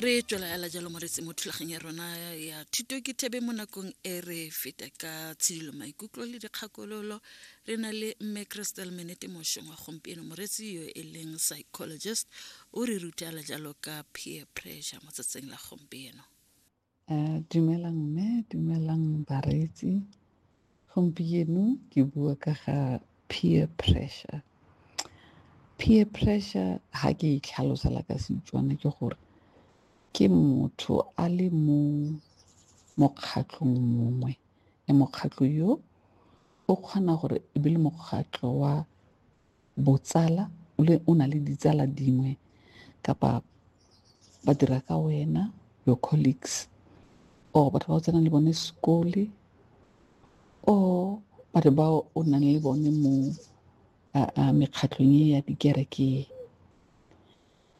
re tswelagela jalo moretse mo thulageng ya rona ya thuto ke thebe mo nakong e re feta ka tshidilo maikutlo le dikgakololo re na le mme crystal menete mošong wa gompieno moretsi yo e leng psychologist o re rutela jalo ka peer pressure mo tsatsing la gompieno Dumelang mme, dumelang bareetsi. Gompieno ke bua ka ga peer pressure. Peer pressure ha ke e tlhalosela ka Setswana ke gore ke motho a le mo mokgatlhong mongwe le mokgatlho yo o kgona gore e be le mokgatlho wa botsala le o na le ditsala dingwe kapa ba dira ka wena your colleagues or batho ba o tsenang le bone sekole or batho ba o nang le bone mo mekgatlhong e ya dikereke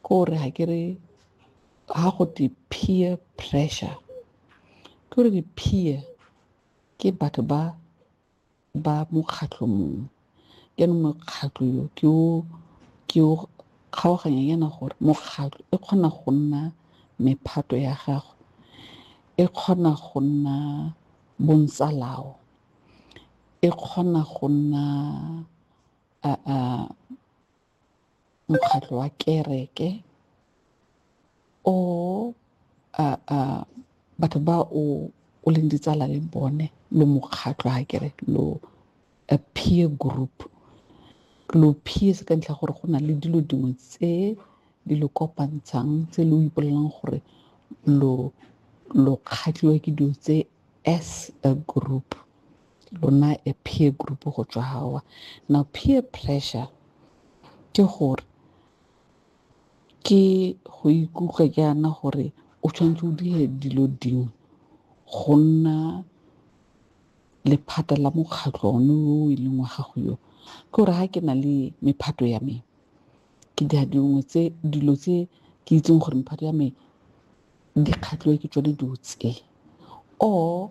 ko re ga ke re ga go te peer pressure ke gore di-peer ke batho ba ba mokgatlho mongwe jaanong mokgatlho yo ke o ke o kgaoganya yana gore mokgatlho e kgona go nna mephato ya gago e kgona go nna bontsalao e kgona go nna a mokgatlho wa kereke o a a batho ba o o leng ditsala le bone lo mokgatlho ha kere lo a peer group lo peers ka ntlha gore go na le dilo dingwe tse di lo kopantshang tse lo ipolelang gore lo lo kgatlhiwa ke dilo tse as a group lona a peer group go tswa gawa now peer pressure ke gore ke go ikutlwa ke yana gore o tshwanetse o dire dilo dingwe go nna lephata la mokgatlho one o e leng wa gago yo ke gore ga ke na le mephato ya me ke dira dingwe tse dilo tse ke itseng gore mephato ya me dikgatlhiwa ke tsone dilo tse or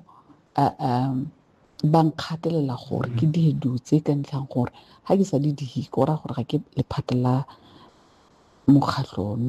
ba nkgatelela gore ke dire dilo tse ka ntlhang gore ga ke sa di dire go raya gore ga ke lephata la mokgatlho ono.